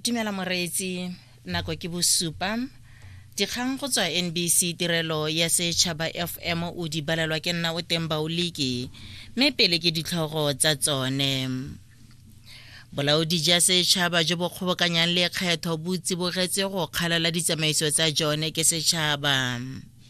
dumela moreetsi nako ke bosupa dikgang go tswa nbc tirelo ya setšhaba fm o di balelwa ke nna o teng baoliki mme pele ke ditlhogo tsa tsone bolaodi jwa setšhaba jo bo kgobokanyang lekgetho bo tsibogetse go kgalala ditsamaiso tsa jone ke setšhaba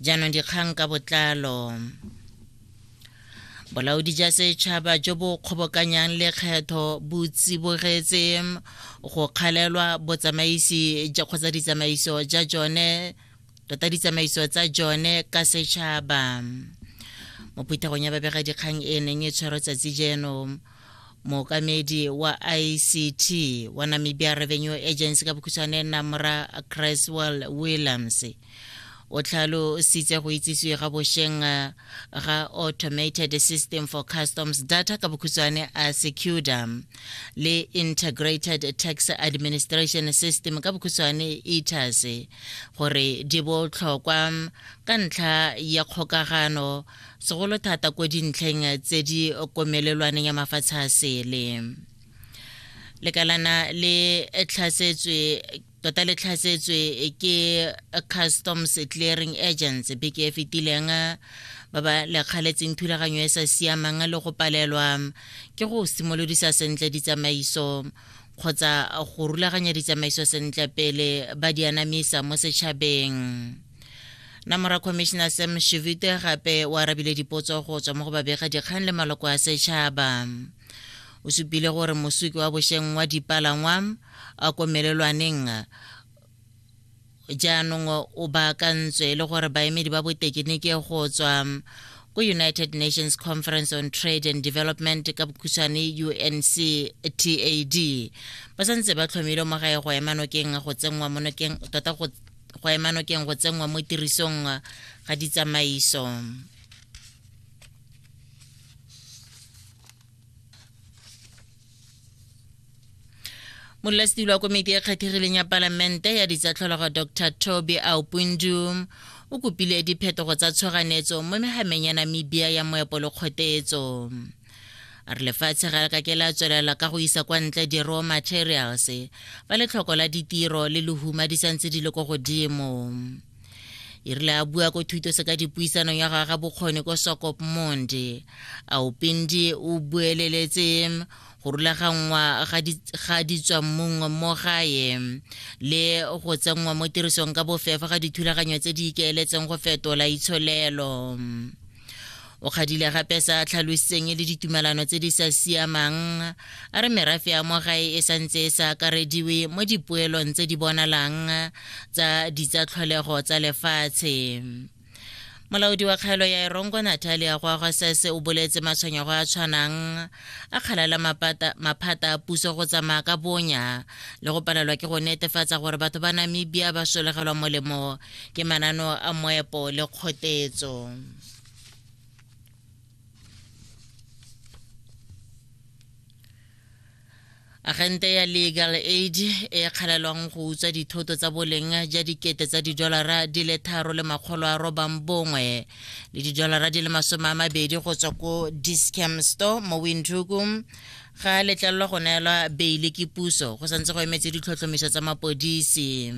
jaanong dikgang ka botlalo bolaodi ja setšhaba jo bo kgobokanyang lekgetho bo tsibogetse go kgalelwa botsamaisi kgotsa ditsamaiso ja jone tota ditsamaiso tsa jone ka setšhaba mo phuthegong ya babegadikgang e neng e tshwarwa tsatsi jeno mookamedi wa ict wa namibia revenue agency ka bokhutshwane namra creswell williams o tlhalositse go itsisiwe ga bosheng eh, ga automated system for customs data ka bokhutshwane a secuda le integrated tax administration system ka bokhutshwane etas gore di botlhokwa ka ntlha ya kgokagano segolo thata ko dintlheng tse di komelelwaneng ya mafatshe a sele lekalana le tlhasetswe tota le tlhasetswe ke customs clearing agents beke e fetileng ba ba lekgaletseng thulaganyo e sa siamang le go palelwa ke go simolodisa sentle ditsamaiso kgotsa go rulaganya ditsamaiso sentle pele ba di anamisa mo setšhabeng na mora commissioner sam shivite gape o arabile dipotso go tswa mo go babega dikgang le maloko a setšhaba o supile gore mosuki wa bošeng wa dipalangwa a komelelwaneng jaanong o baakantswe le gore baemedi ba botekeniki go tswa ko united nations conference on trade and development ka bokhutshwane unctad ba santse ba tlhomile mo gae go ema nokeng go tsenngwa mo nokeng tota go go ema nokeng go tsenngwa mo tirisong ga ditsamaiso molelasetilo wa komiti e kgethegileng ya palamente ya ditsatlhologo dr toby aupundu o kopile diphetogo tsa tshoganyetso mo megameng ya namibia ya moepo le kgotetso a re lefatshe ga le ka ke la tswelela ka go isa kwa ntle di-raw materials fa letlhoko la ditiro le lehuma di santse di le ko godimo e rile a bua ko thuto se ka dipuisanong ya gagwe bokgoni ko sokop monde a opindi o bueleletse go rulaganngwa ga ditswammung mo gae le go tsenngwa mo tirisong ka bofefa ga dithulaganyo tse di ikeeletseng go fetola itsholelo o kgadile gape sa tlhalositseng e le ditumelano tse di sa siamang a re merafe ya mo gae e santse e sa akarediwe mo dipoelong tse di bonalang tsa ditsatlholego tsa lefatshe molaodi wa kgaelo ya erongo natalia goagwa sese o boletse matshwenyego a tshwanang a kgalala maphata a puso go tsamaya ka bonya le go palelwa ke go netefatsa gore batho ba namibia ba solegelwa molemo ke manano a moepo le kgotetso agente ya legal aid e kgalelwang go utswa dithoto tsa boleng ja dikete tsa didolara di le tharo le makgolo a robang bongwe le didolara di le masome a mabedi go tswa ko discam store mo windhoekum ga letlelelwa go neelwa beile ke puso go santse go emetse ditlhotlhomiso tsa mapodisi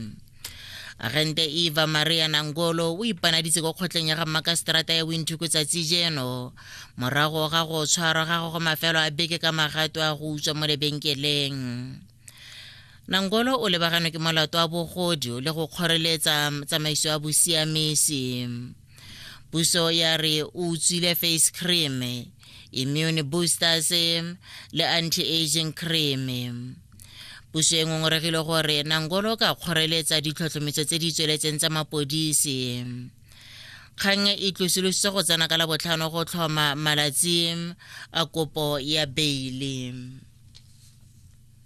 agente eva maria nangolo o ipanaditse ko kgotleng ya ga mmakaseterata ya winthuko tsatsi jeno morago ga go tshwarwa ga go go mafelo a beke ka magato a go utswa mo lebenkeleng nangolo o lebaganwe ke molato wa bogodio le go kgoreletsa tsamaiso ya bosiamisi puso ya re o utswile face cream immune boosters le anti-aging cream puso e ngongoregile gore nangolo ka kgoreletsa ditlhotlhometso tse di tsweletseng tsa mapodisi kgang e tlosolositse go tsena ka la botlhano go tlhoma malatsi a kopo ya beile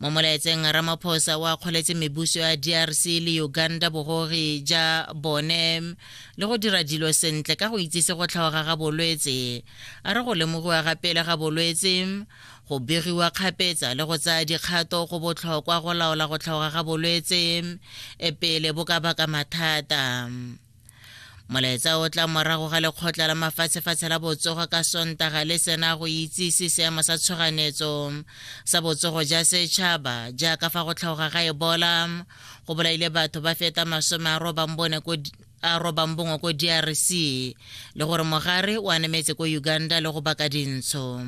mo molaetseng ramaphosa o akgoletse mebuso ya drc le uganda bogogi ja bone le go dira dilo sentle ka go itsise go tlhaoga ga bolwetse a re go lemogiwa ga pele ga bolwetse go begiwa kgapetsa le go tsaya dikgato go botlhokwa go laola go tlhaoga ga bolwetse e pele bo ka baka mathata molaetsa o tla morago ga lekgotla la mafatshefatshe la botsogo ka sontaga le sena go itsise seemo sa tshoganetso sa botsogo ja setšhaba jaaka fa go tlhaoga ga ebola go bolaile batho ba feta masome a robang bone ko a robang bongwe ko drc le gore mogare o anemetse ko uganda le go baka dintsho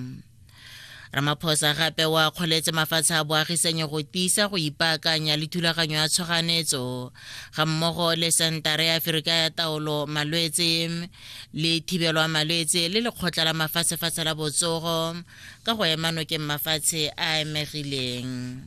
ramaphosa gape wa kgoletse mafatshe a boagisanyo go tiisa go ipaakanya le thulaganyo ya tshoganetso ga mmogo le sentara ya aferika ya taolo malwetse le thibelo ya malwetse le lekgotla la mafatshefatshe la botsogo ka go ema nokeng mafatshe a emegileng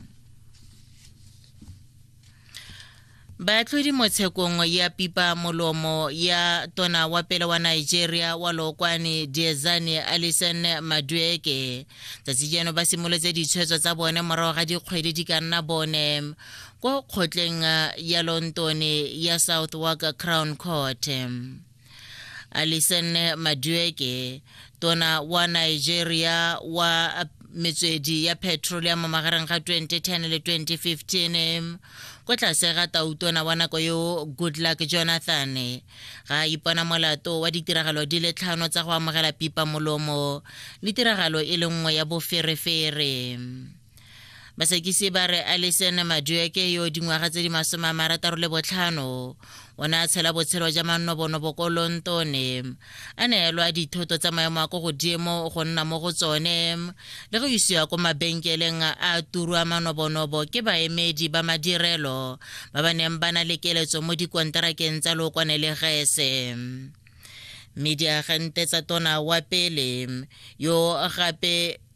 baatlhodi mo tshekong ya pipa molomo ya tona wa pele wa nigeria wa lookwane diezane alison madueke tsatsi jeno ba simolotse ditshwetso tsa bone morago ga dikgwedi di ka nna bone ko kgotleng ya lontone ya southwark crown court Alison Madueke tona wa Nigeria wa metswedi ya petroleum magareng ga 2010 le 2015 kwa tlase ga tautona wa nako yo goodluck jonathan ga a ipona molato wa ditiragalo di le tlhano tsa go amogela pipa molomo le tiragalo e le nngwe ya boferefere basakisi ba re alison madueke yo dingwaga tse di masome a marataro le botlhano o ne a tshela botshelo ja mannobonobo ko lontone a neelwa dithoto tsa maemo a ko godimo go nna mo go tsone le go isiwa ko mabenkeleng a turwa manobonobo ke baemedi ba madirelo ba ba neng ba na le keletso mo dikonterakeng tsa lookwane le gese mme diagente tsa tona wa pele yo gape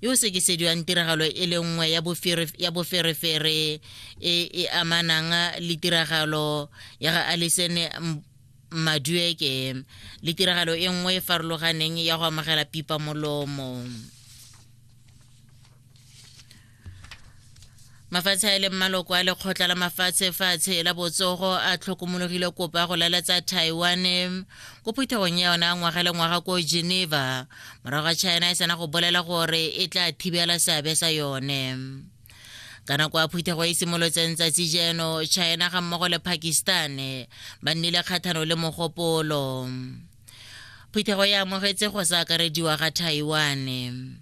yo o sekisediwang tiragalo e le nngwe ya boferefere e e amanang le tiragalo ya ga Alison Madueke le tiragalo e nngwe e farologaneng ya go amogela pipa molomo. mafatshe a e leng maloko a lekgotla la mafatshe fatshe la botsogo a tlhokomologile kopa go lalatsa taiwan ko phuthegong ya yona ngwaga le ngwaga ko geneva morago ga china e sena go bolela gore e tla thibela seabe sa yone ka nako ya phuthego e simolotseng tsatsi jeno china ga mmogo le pakistan ba nnile kgathano le mogopolo phuthego e amogetse go sa akarediwa ga taiwan